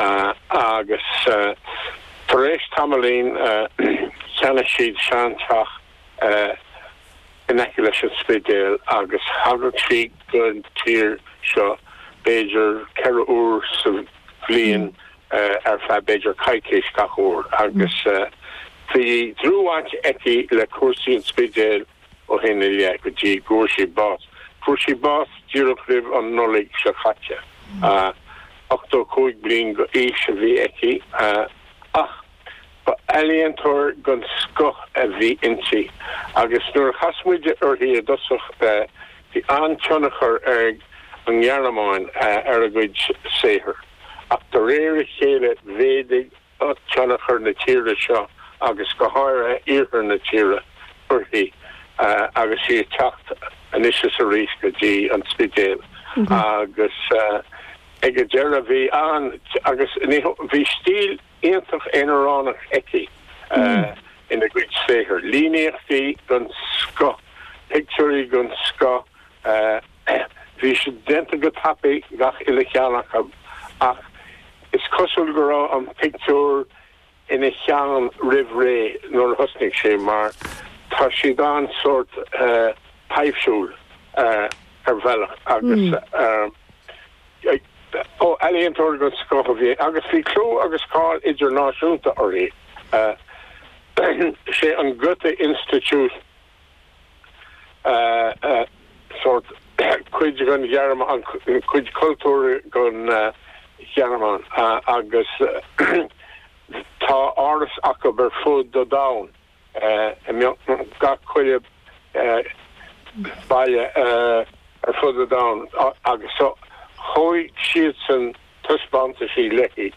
agus tar éis tamaillín cheannaigh siad sean-teach in aice leis an Spidéal agus thagadh sí don tír seo b'fhéidir ceithre uair sa bhliain ar feadh b'fhéidir coicís gach uair agus bhí dlúthbhaint aici le cúrsaí an Spidéil. ó shin i leith go dtí go bhfuair sí bás. Fuair sí bás díreach roimh an Nollaig seo caite, 85 bliain d'aois a bhí aici ach ba ealaíontóir den scoth a bhí inti agus nuair a chas muid uirthi i dtosach bhí an-tionchar ag an nGearmáin ar a gcuid saothair ach de réir a chéile mhéadaigh tionchar na tíre seo, agus go háirithe iarthar na tíre, uirthi agus í ag teacht anois is arís go dtí an Spidéal agus ag an deireadh bhí an, agus ní, bhí stíl iontach aonaránach aici ina cuid saothair, líníochtaí den scoth, pictiúirí den scoth, Bhí siad déanta go tapaidh, chuile cheann acu, ach is cosúil go raibh an pictiúr ina cheann roimh ré nuair a thosnaigh sé, mar tá siad an-sórt taibhsiúil ar bhealach agus ealaíontóir den scoth a bhí, agus bhí clú agus cáil idirnáisiúnta uirthi. Sé an Goethe Institut sórt cuid den Ghearmáin, cuid cultúr den Ghearmáin agus tá áras acu ar fud an domhain, i mbeagnach chuile bhaile ar fud an domhain agus chuir siadsan taispeántais léi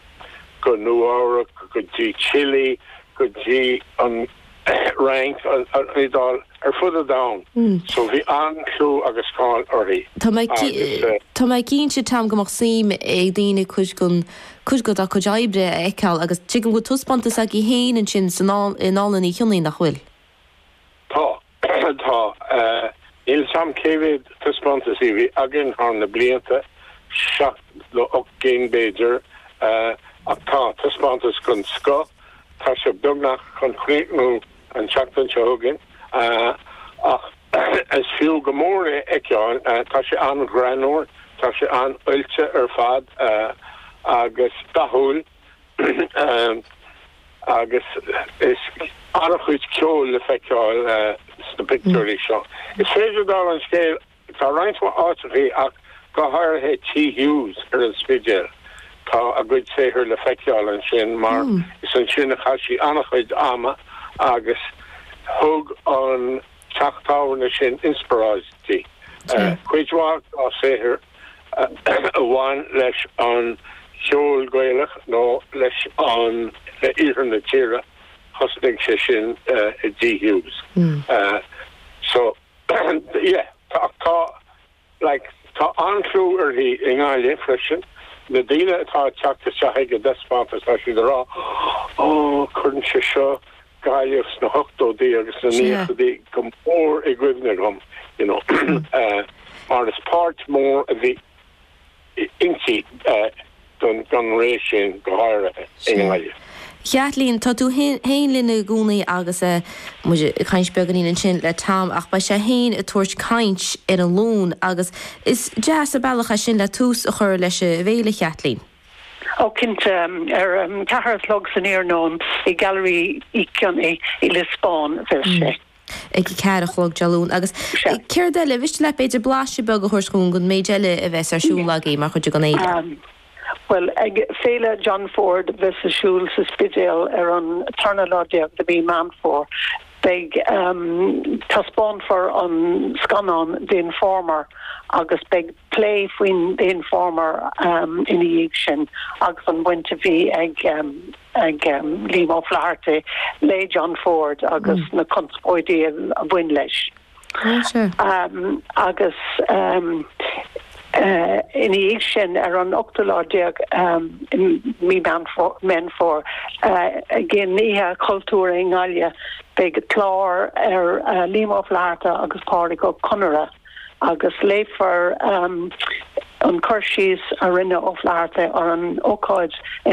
go Nua-Eabhrac go dtí Chile go dtí an Fhrainc, an Iodáil, ar fud an domhain. So bhí an-chlú agus cáil uirthi agus. Tá mé cinnte, Tom, go mbeadh suim ag daoine cuid den, cuid dá cuid oibre a fheiceáil agus tuigim go bhfuil taispeántas agaibh féin ansin sa ndánlann Uí Chionnaith, nach bhfuil? Tá. Tá. Níl 's a'm cé mhéad taispeántas a bhí againn thar na blianta, seacht nó ocht gcinn b'fhéidir, ach tá taispeántas den scoth. Tá sé beagnach chun críochnú an tseachtain seo chugainn ach is fiú go mór é a fheiceáil. Tá sé an-ghreannmhar, tá sé an-oilte ar fad agus dathúil. agus is an-chuid ceoil le feiceáil sna pictiúirí seo. Is féidir, dála an scéil, tá roinnt mhaith áiteachaí, ach go háirithe Tigh Hughes ar an Spidéal, tá a cuid saothar le feiceáil ansin, mar is ansin a chaith sí an-chuid ama agus thug an teach tábhairne sin an inspioráid di. Cuid mhaith dá saothair a bhain leis an gceol Gaelach nó le hiarthar na tíre, thosnaigh sé sin i dTigh Hughes. So, yeah, tá, tá, like, tá an-chlú uirthi i nGaillimh freisin. Na daoine atá ag teacht isteach ag an dtaispeántas, tá siad ag rá, Oh, cuireann sé seo Gaillimh sna hochtóidí agus sna naíochaidí go mór i gcuimhne dhom you know mar is páirt mór a bhí inti den ré sin go háirithe i nGaillimh. Caitlín, tá tú féin linn i gcónaí agus muid ag caint beagáinín ansin le Tom ach beidh sé féin ag tabhairt caint ar an Luan agus is deas an bealach é sin le tús a chur leis an bhféile Caitlín. Ó, cinnte. Ar a ceathair a chlog san iarnóin i Gallery Uí Chionnaith i Lios Bán a bheas sé. Ag a ceathair a chlog Dé Luain. Agus céard eile? An mhiste leat, b'fhéidir, blaiseadh beag a thabhairt dhúinn den méid eile a bheas ar siúl agaibh mar chuid den fhéile? Bhuel, ag Féile John Ford a bheas ar siúl sa Spidéal ar an tarna lá déag de mhí Mheán Fómhair, Beidh. Taispeánfar an scannán The Informer agus beidh plé faoin The Informer ina dhiaidh sin agus an bhaint a bhí ag Liam O'Flaherty le John Ford agus na conspóidí a bhain leis. Agus ina dhiaidh sin, ar an ochtú lá déag de mhí Mheán Fómhair, ag an Oíche Chultúir i nGaillimh, beidh clár ar Liam Ó Flaithearta agus Pádraic Ó Conaire agus léifear an cur síos a rinne Ó Flaithearta ar an ócáid in